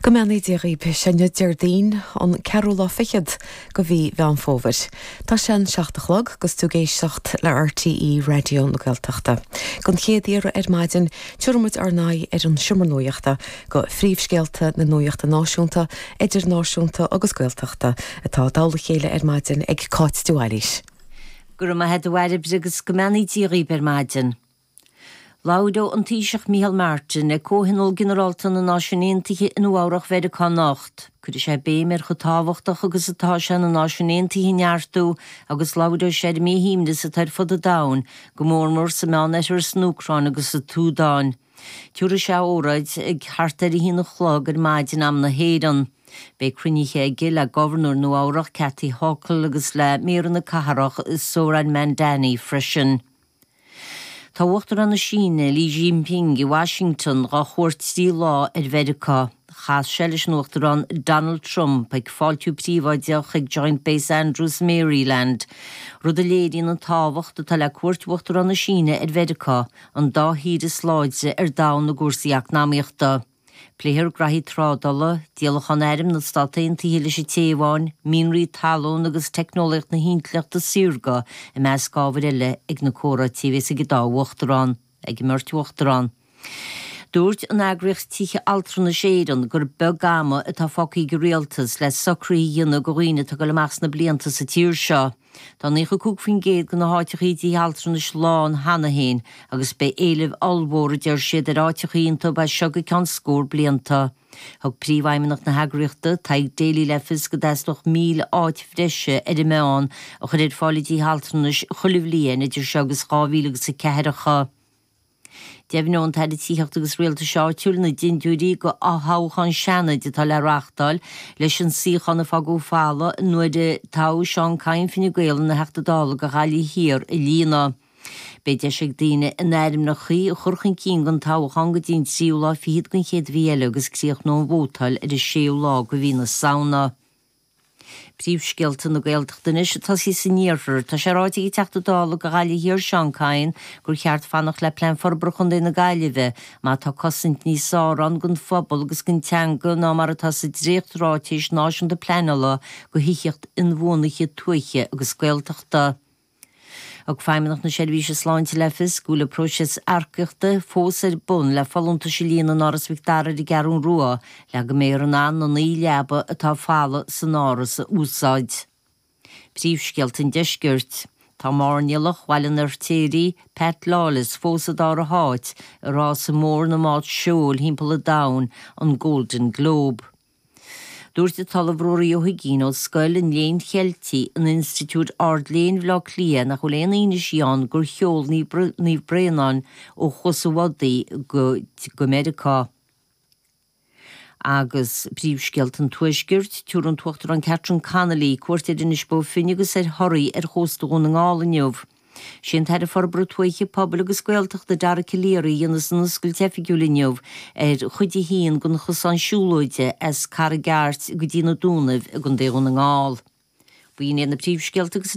Go mbeannaí Dia dhaoib, sé inniu Déardaoin an ceathrú lá fichead de mhí Mheán Fómhair. Tá sé an seacht a chlog agus tú ag éisteacht le RTÉ Raidió na Gaeltachta. Don chéad iarraidh ar maidin tiúrfaidh muid ár n-aghaidh ar an Seomra Nuachta do phríomhscéalta na nuachta náisiúnta, idirnáisiúnta agus Gaeltachta atá curtha i dtoll a chéile ar maidin ag Cáit de Bhailís. Go raibh maith a't a Bhairbre agus go mbeannaí Dia dhaoib ar maidin. Labhróidh an Taoiseach Micheál Martin, ag Comhthionól Ginearálta na Náisiún Aontaithe i Nua Eabhrach Mheiriceá anocht, cuirfidh sé béim ar chomh tábhachtach agus atá sé na Náisiúin Aontaithe a neartú agus labhróidh sé ar an míshuaimhneas atá ar fud an domhain, go mór mór sa Meánoirthear, san Úcráin agus sa tSúdáin. Tiúrfaidh sé óráid ag thart ar a haon a chlog ar maidin am na hÉireann. Beidh cruinnithe aige le Gobharnóir Nua Eabhrach Kathy Hochul agus le Maor na Cathrach Zohran Mamdani freisin. Tá Uachtarán na Síne, Xi Jinping, i Washington do chuairt trí lá ar Mheiriceá. Chas sé leis an Uachtarán Donald Trump ag fáiltiú príobháideach ag Joint Base Andrews, Maryland, rud a léiríonn an tábhacht atá le cuairt Uachtarán na Síne ar Mheiriceá, an dá thír is láidre ar domhan i gcúrsaí eacnamaíochta. Pléifear gnoithí trádála, díolachán airm na Stát Aontaithe leis an Téaváin, mianraí talún agus teicneolaíocht na hintleachta saorga i measc ábhar eile ag na comhráití a bheas ag an dá uachtarán ag an mbeirt uachtarán. Dúirt an eagraíocht Tithe Altranais Éireann gur beag ama atá fágtha ag an Rialtas le socruithe a dhéanamh do dhaoine atá ag dul amach sna blianta sa tír seo. Tá 95% de na háiteachaí i dtithe altranais lán cheana féin agus beidh éileamh ollmhór, a deir siad, ar áiteachaí iontu as seo go ceann scór blianta. Thug Príomhfheidhmeannach na heagraíochta, Tadhg Daly le fios go dteastódh 1,000 áit bhreise ar an meán a chur ar fáil i dtithe altranais chuile bhliain idir seo agus 2000 agus a ceathracha Deimhneoidh an tAire Tithíochta agus Rialtais Áitiúil na dindiúirí d'fhothoghchán Seanaid atá le reáchtáil leis an suíochán a fágadh folamh nuair a toghadh Seán Kyne Fine Gael ina Theachta Dála do Ghaillimh Thiar a líonadh. Beidh deis ag daoine a n-ainmneacha a chur chun cinn don toghchán go dtí an tríú lá fichead den chéad mhí eile agus críochnóidh an vótáil ar an séú lá de mhí na Samhna. Príomhscéalta na Gaeltachta anois, ag tosaí san iarthar. Tá sé ráite ag an Teachta Dála do Ghaillimh Thiar Seán Kyne gur cheart fanacht le Plean Forbartha Chontae na Gaillimhe má tá cosaint níos fearr ann don phobal agus don teanga ná mar atá sa dréachtráiteas náisiúnta pleanála do thithíocht inbhuanaithe tuaithe agus Gaeltachta. Ag Feidhmeannacht na Seirbhíse Sláinte le fios go bhfuil an próiseas earcaíochta fós ar bun le folúntais a líonadh in Áras Mhic Dara ar an gCeathrú Rua le go mbeifear in ann na naoi leaba atá folamh san Áras a úsáid. Príomhscéalta an Deiscirt. Tá mairnéalach Bhaile an Fheirtéaraigh, Pat Lawless, fós i dara háit i rása mór na mbád seoil thimpeall an domhain, an Golden Globe. Dúirt an tOllamh Ruairí Ó hUiginn ó Scoil an Léinn Cheiltigh in Institiúid Ard-Léinn Bhaile Átha Cliath nach bhfuil aon fhianaise ann gur sheol Naomh Bréanainn ó Chuas an Bhodaigh go Meiriceá agus príomhscéalta an Tuaiscirt, Tabharfaidh an tUachtarán Catherine Connolly, cuairt ar Inis Bó Finne agus ar Thoraigh ar chósta Dhún na nGall inniu. Is é an tAire Forbartha Tuaithe, Pobail agus Gaeltachta Dara Calleary a dhéanas an oscailt oifigiúil inniu ar chuid a haon den chosán siúlóide as Carraig Airt go dtí na Dúnaibh i gContae Dhún na nGall. B'in iad na príomhscéalta agus.